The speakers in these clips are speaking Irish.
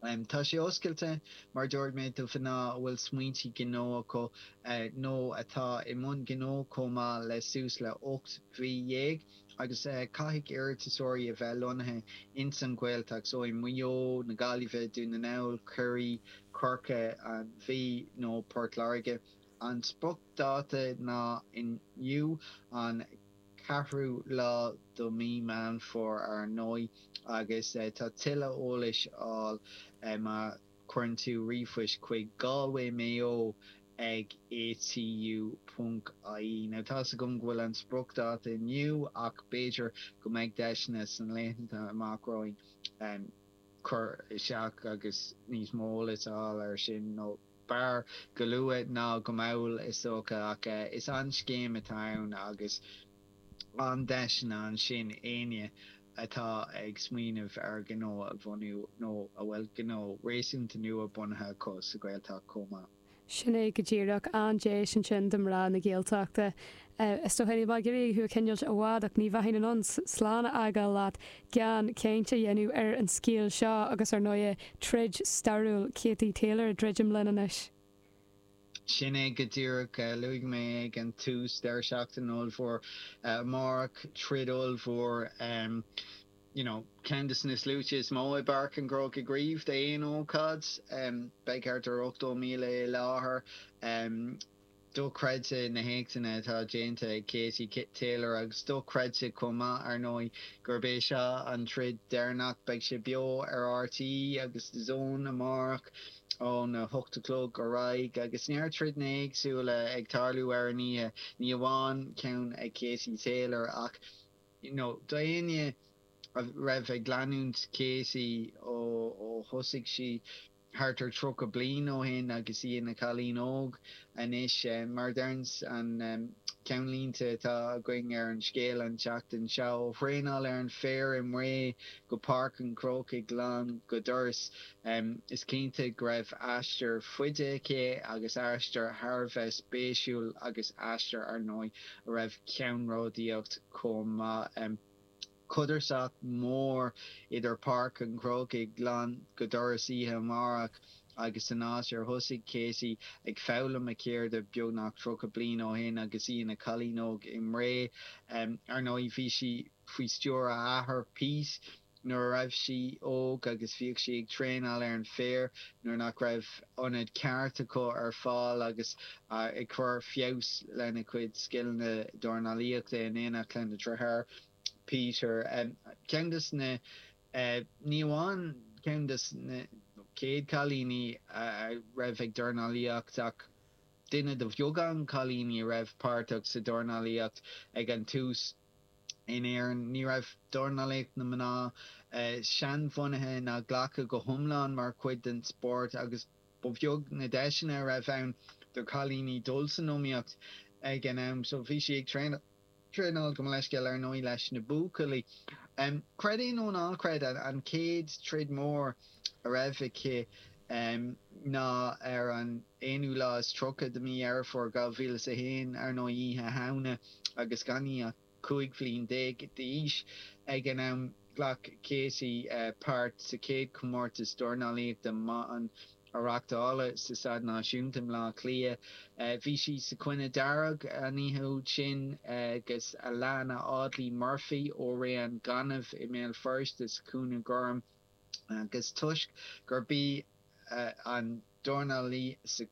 Tá sé oscailte, mar a dúirt mé, do mhná a bhfuil smaointe gnó acu nó atá i mbun gnó chomh maith le suas le hocht mhí dhéag agus caithfidh iarratasóirí a bheith lonnaithe ins an Ghaeltacht, so i Maigh Eo, na Gaillimhe, Dún na nGall, Ciarraí, Corcaigh, an Mhí nó Port Láirge. An spriocdháta ná inniu, an. 4ú lá de mhí Mheán Fómhair ár ndóigh agus tá tuilleadh eolais ar fáil má chuireann tú ríomhphost chuig Galway Mayo ag ATU ponc IE. Now tá's agam go bhfuil an spriocdháta inniu ach b'fhéidir go mbeidh deiseanna sna laethanta amach romhainn cur isteach agus níos mó eolais a fháil ar sin nó. B'fhearr go luath ná go mall, is dócha, ach is an scéim atá ann agus an-deiseanna ansin d'éinne atá ag smaoineamh ar ghnó a bhunú nó a bhfuil gnó réasúnta nua bunaithe acu sa Ghaeltacht chomh maith. Sin é go díreach, an-deis ansin do mhná na Gaeltachta. Is dócha níl mé ag iarraidh thú a choinneáilt i bhfad ach ní bheinn in ann slán a fhágáil leat gan caint a dhéanamh ar an scéal seo agus ar ndóigh troid stairiúil Katie Taylor ag druidim linn anois. Sin é go díreach. Luaigh mé ag an tús deireadh seachtaine ollmhór amárach, troid ollmhór, you know, ceann de na sluaite is mó i bPáirc an Chrócaigh riamh d'aon ócáid. Beidh thart ar 80,000 i láthair. Dochreidte na héachtanna atá déanta ag Katie Taylor agus dochreidte chomh maith, ar ndóigh, gurb é seo an troid deireanach. Beidh sé beo ar RTÉ agus DAZN amárach óna hocht a chlog ar aghaidh. Agus neart troideanna éagsúla ag tarlú ar an oíche, ní amháin ceann ag Katie Taylor ach you know d'éinne a raibh ag leanúint Katie ó thosaigh sí, thart ar 30 bliain ó shin agus í ina cailín óg anois. Mar a deireann an ceannlíne atá againn ar an scéal an tseachtain seo, Ó thraenáil ar an féar i mBré go Páirc an Chrócaigh lán go doras, is cinnte go raibh aistear fada aici agus aistear thar a bheith spéisiúil agus aistear, ar ndóigh, a raibh ceannródaíocht chomh maith. Codarsnacht mhór idir Páirc an Chrócaigh lán go doras oíche amárach agus an áit ar thosaigh Katie ag foghlaim a ceirde beagnach 30 bliain ó shin agus í ina cailín óg i mBré. Ar ndóigh, bhí sí faoi stiúir a hathar, Pete, nuair a raibh sí óg agus bhíodh sí ag traenáil ar an féar nuair nach raibh ionad ceart acu ar fáil agus ag cur feabhas lena cuid scileanna dornálaíochta in éineacht lena dritháir, Peter. Ceann de na, ní amháin ceann de na, chéad chailíní a raibh ag dornálaíocht ach duine de bheagán cailíní a raibh páirteach sa dornálaíocht ag an tús. in Éirinn, ní raibh dornálaíocht na mná seanbhunaithe ná glactha go hiomlán mar chuid den spórt agus ba bheag na deiseanna a raibh ann do chailíní dul san iomaíocht ag an am, so bhí sí ag traenáil, gabh mo leithscéal, ar ndóigh, leis na buachaillí. Creid é nó ná creid, an chéad troid mór. a raibh aici ná ar an aonú lá is tríocha de mhí Dheireadh Fómhair 2001, ar ndóigh, Oíche Shamhna, agus gan í ach cúig bhliain déag d'aois ag an am. Ghlac Katie páirt sa chéad chomórtas dornálaíochta mná a reáchtáladh sa Staid Náisiúnta i mBleá Cliath. Bhí sí sa chúinne dearg an oíche úd sin agus Alanna Audley Murphy ó Rae na Gainimhe i mBéal Feirste sa chúinne gorm. agus toisc gurb í an dornálaí sa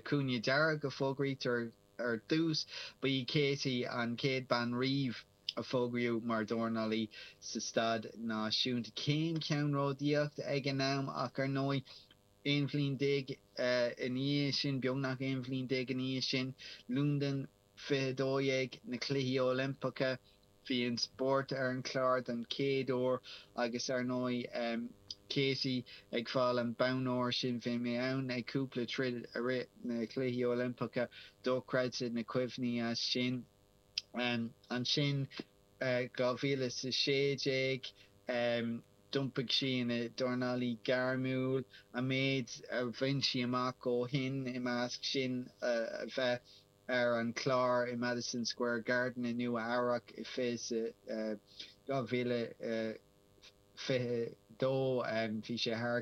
chúinne dearg a fógraítear ar dtús, ba í Katie an chéad bhean riamh a fógraíodh mar dhornálaí sa staid náisiúnta. Cén ceannródaíocht ag an am, ach ar ndóigh, aon bhliain déag ina dhiaidh sin, beagnach aon bhliain déag ina dhiaidh sin, Londain, 2012, na Cluichí Oilimpeacha, bhí an spórt ar an chlár don chéad uair agus ar ndóigh Katie ag fáil an bonn óir sin. Bhí mé ann ag cúpla troid i rith na Cluichí Oilimpeacha, dochreidte na cuimhní as sin. Ansin 2016 d'iompaigh sí ina dornálaí gairmiúil, an méid a bhain sí amach ó shin i measc sin a bheith ar an chlár i Madison Square Garden i Nua-Eabhrac i 2022. Bhí sé thar